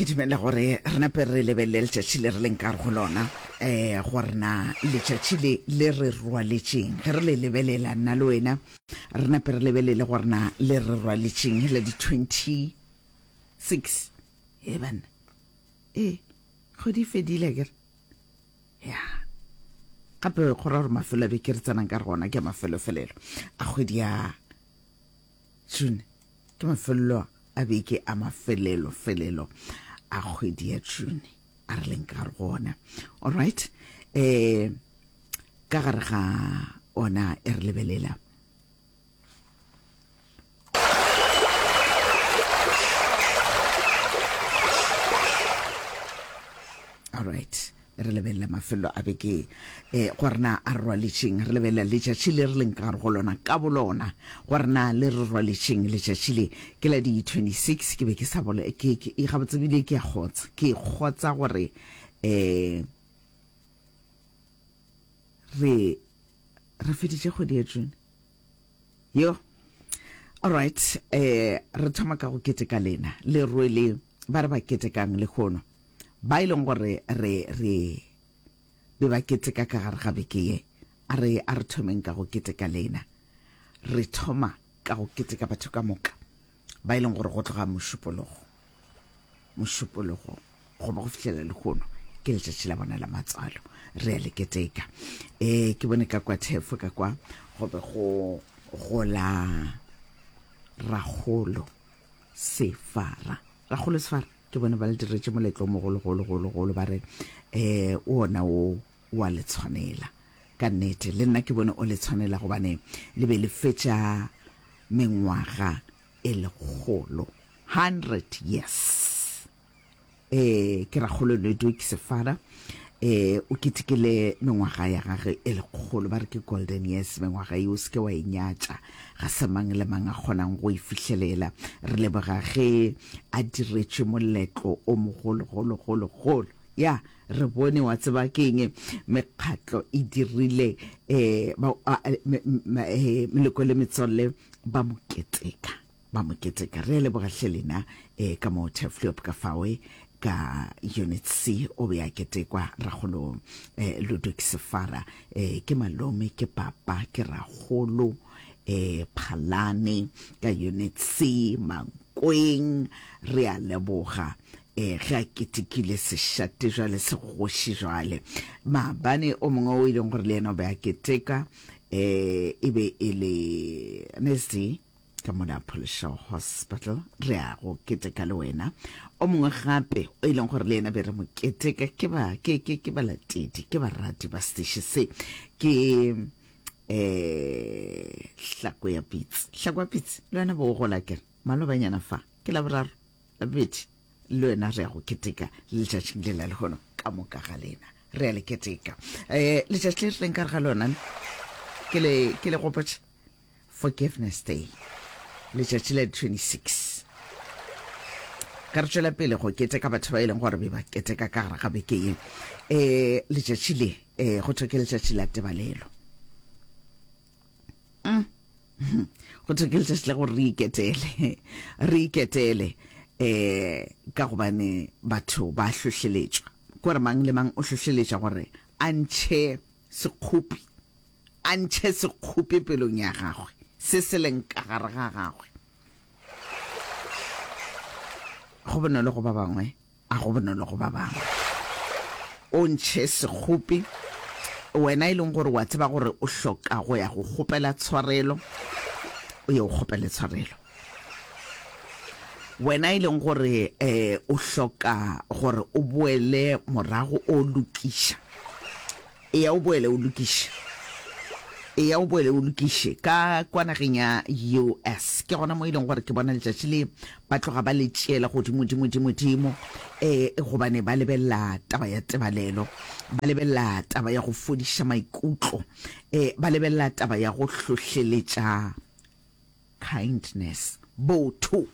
ke dumela gore re nape re lebelele letšatši le re leng ka go lona um gore na letšatši le le re rwaletšeng ge re le lebelela nna le wena re nape re lebelele gore na le re rwaletšeng la di-twenty six e banna ee kgwedi fedile kere ya gape go ra gore mafelo a be ke re tsenang ka re gona ke mafelofelelo a kgwedi ya June ke mafelelo a beke a mafelelo felelo a kgwedi ya June a re leng ka go ona all right eh ka gare ga ona e re lebelela all right re lebelele mafelo a beke e gore na a re rwaletšeng re lebelela letšatši le re leng ka gare go lona ka bolona gore na le re rwaletšeng letšatši le ke la di-26 ke be ke sa bole ke gabotsebile ke a kgotsa ke kgotsa gore um re re feditše kgwedi ya june yo alright um re thoma ka go keteka lena le rwele Ba re ba ketekang lehono, ba e leng gore re re be ba keteka ka gare ga beke ye, a re a re thomeng ka go keteka lena. Re thoma ka go keteka batho ka moka ba e leng gore go tloga mošupologo mošupologo go ba go fihlela lehono ke letšatši la bona la matswalo re a le keteka um ke bone ka kwa thefo ka kwa go be go gola ragolo sefara bagolo sefara ke bone ba le diretse moletlo mogologologologolo ba re um o ona o wa le tshwanela ka nnete le nna ke bone o le tshwanela gobane le be le fetša mengwaga e lekgolo 100 yes eh ke ra kgolo ledu ke sefara eh o ketekele mengwaga ya gage e lekgolo ba re ke golden years mengwaga e o seke wa e nyatša ga se mang le mang a kgonang go e fihlelela re leboga ge a diretše moletlo o mogologologologolo ya re bone wa tseba keng mekgatlo e dirile um meleko le metswalle ba mo keteka Ba mo keteka. Re a leboga hle lena. E, ka mo Tefliop ka fawe ka unit c o be a ketekwa ragolo eh, ludwig sefara eh, ke malome ke papa ke ragolo eh, phalane ka unit c mankweng re a leboga eh ge a ketekile sešate jwale se kgoši jwale maabane o mongwe o e leng gore le yena o be a keteka eh e be e le nesi ka mona pholesho hospital re ya go keteka le wena o mongwe gape o e leng gore le ena be re mo keteka ke ba ke ke ke balatedi ke barati ba station se ke eh hlako ya pitsi hlako ya pitsi le wena bo gola ke malobanyana fa ke la boraro la bobedi le wena re ya go keteka le letšatšing le la lehono ka moka ga lena re ya le keteka um letšatši le re tleng ka re ga lona ke le gopotše Forgiveness Day, letšatši la 26. Ka re tšwela pele go keteka batho ba e leng gore be ba keteka ka gare ga beke ye. E letšatši le e go thwe ke letšatši la tebalelo. Mm. go thwe ke letšatši la gore re iketele re iketele eh ka gobane batho ba hlohleletšwa gore mang le mang o hlohleletša gore a ntšhe Sekgopi, a ntšhe sekgopi pelong ya gagwe, se se leng ka gare ga gagwe. Go bonolo go ba bangwe, a go bonolo go ba bangwe. O ntšhe sekgopi, wena e leng gore wa tseba gore o hloka go ya go kgopela tshwarelo, o ye o kgopele tshwarelo. Wena e leng gore um o hloka gore o boele morago o lokiša, eya o boele o lokiše, eya o boele o lokiše ka kwa nageng ya US. Ke gona mo e leng gore ke bona letšatši le ba tloga ba le tšeela godimo dimo dimo dimo um gobane ba lebelela taba ya tebalelo, ba lebelela taba ya go fodiša maikutlo, um ba lebelela taba ya go hlohleletša kindness, botho,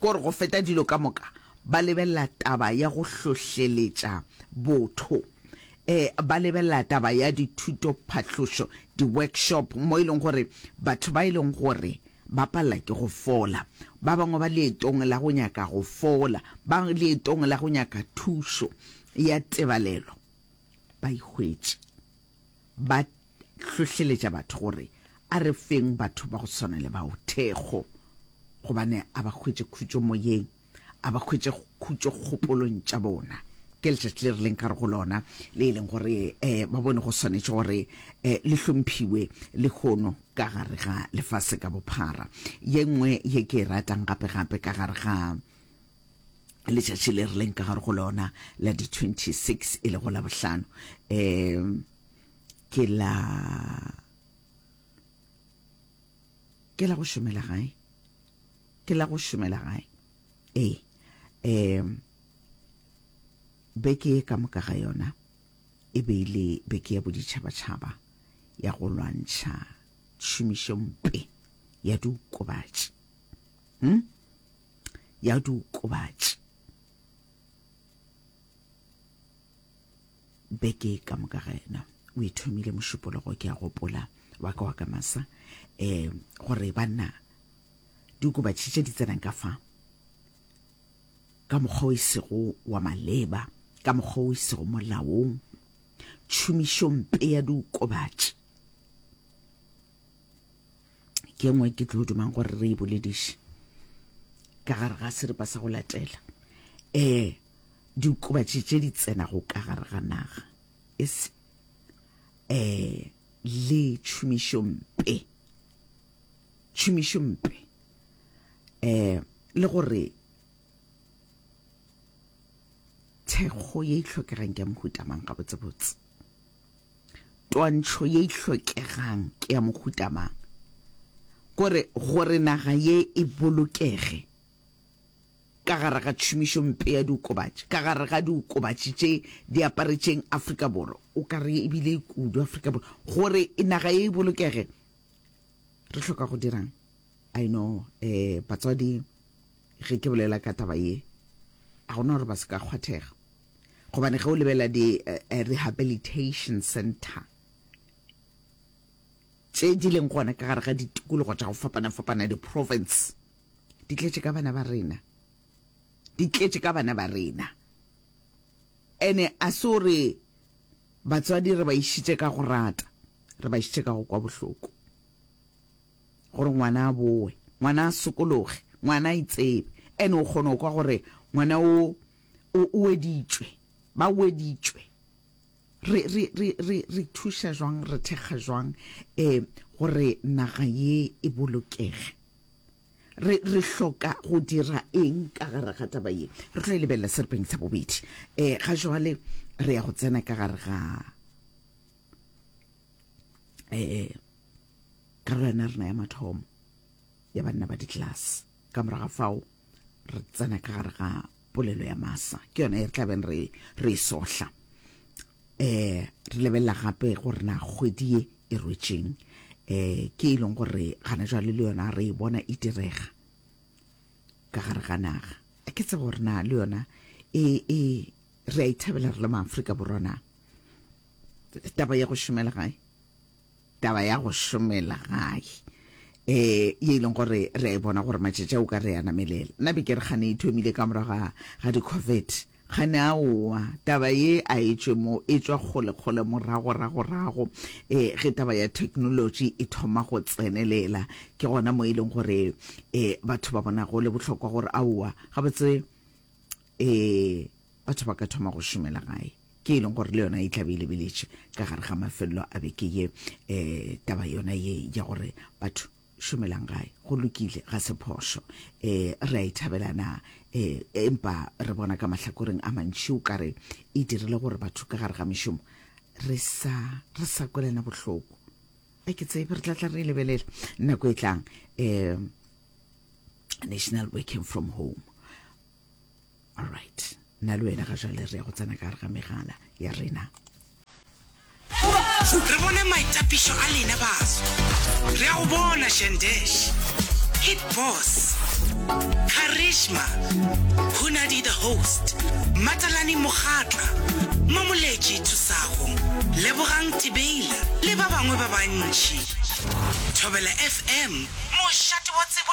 kore go feta dilo ka moka ba lebelela taba ya go hlohleletša botho. E, ba lebelela taba ya dithuto, phahlošo, di-workshop mo e leng gore batho ba e leng gore ba palela ke go fola, ba bangwe ba leetong la go nyaka go fola, ba leetong la go nyaka thušo ya tebalelo, ba ihwetše ba hlohleletša batho gore a re feng batho ba go swana le bao thekgo, gobane a ba hwetše khutšo moyeng, a ba hwetše khutšo kgopolong tša bona. Ke letšatši le rileng ka re go lona le e leng gore um ba bone go swanetše gore um le hlomphiwe lehono ka gare ga lefase ka bophara. Ye nngwe ye ke e ratang gape-gape ka gare ga letšatši le rileng ka gare go lona la di 26 e lego la bohlano um ke la ke la go šomela gae ke la go šomela gae ee um beke ka moka ga yona e be ile e beke ya boditšhabatšhaba ya go lwantšha tšhomišompe ya diokobatši hmm? ya diokobatši beke ka moka ga yena o ithomile mošupologo ke a gopola wa ka wa ka masa um gore banna diokobatši tše di tsenang ka fa ka mokgwa o isego wa maleba ka mokgwa o isego molaong tšhomišompe ya diokobatši ke e nngwe ke tlo dumang gore re e bolediše ka gare ga seripa sa go latela um diokobatši tše di tsenago ka gare ga naga e se um le tšhomišompe tšhomišompe um le gore thekgo ye e tlhokegang ke ya mohutamang gabotsebotse Twantšho ye e hlokegang ke ya mohuta mang? Gore gore naga ye e bolokege ka gare ga tšhomišo mpe ya diokobatši, ka gare ga diokobatši tše di aparetšeng Afrika Borwa, o ka re e bile kudu Afrika Borwa, gore naga ye e bolokege re hloka go dirang? I know eh batswadi ge ke bolela ka taba ye a gona gore ba se ka kgwathega. Gobane ge o lebelela di uh, rehabilitation center tše di leng gona ka gare ga ditikologo tša go fapana-fapana di-province di tletše ka bana ba rena di tletše ka bana ba rena ene a se o re batswadi re ba išitše ka go rata re ba išitše ka go kwa bohloko gore ngwana a bowe ngwana a sokologe ngwana a itsebe ene o kgone go kwa gore ngwana o O weditšwe. Ba weditšwe. Re, re, re, re, re thuša jwang, re thekga jwang eh, gore naga ye e bolokege? Re, re hloka go dira eng ka gare ga taba ye? Re tlo e lebelela seripeng sa bobedi. Eh, ga jwale re ya go tsena ka gare ga eh, karolwana rena ya mathomo ya banna ba ditlelase. Ka morago ga fao. re tsena ka gare ga polelo ya masa ke yone e re tlabeng re re e sohla um re lebelela gape gore na kgwedi ye e rwetseng um ke e leng gore gana jwale le yona re e bona e direga ka gare ga naga a ke tsebe gore na le yona e e re a ithabela re le maaforika borwa na taba ya go šomela gae taba ya go šomela gae e ye e leng gore re a e bona gore matšatši o ka re ya namelela nna be ke re gane e thomile ka morago ga ga di-covid gane a oa taba ye a e tšwe mo e tswa kgolekgole moragoragorago um eh, ge taba ya technology e thoma go tsenelela ke gona mo e leng gore um batho ba bona go le bohlokwa gore a oa gabotse Ee, batho ba ka thoma go šomela gae ke e leng gore le yona e tlabe e lebeletše ka gare ga mafelelo a beke ye um taba yona ye ya gore batho šomelang gae go lokile ga se phošo um re a e thabela na um empa re bona ka mahlakoreng a mantši o kare e dirile gore batho ka gare ga mešomo re sa re sa kwelana bohloko a ke tsebe re tlatla re e lebelela nako e tlang um national working from home alright nna le wena ga jale re ya go tsena ka gare ga megala ya rena re bone maitapišo a lena baso re a go bona shandesh hit boss charisma hunadi the host matalani mogatla mamoletši thusago lebogang tibeila le ba bangwe ba bantši thobela fm mošate wa tsebo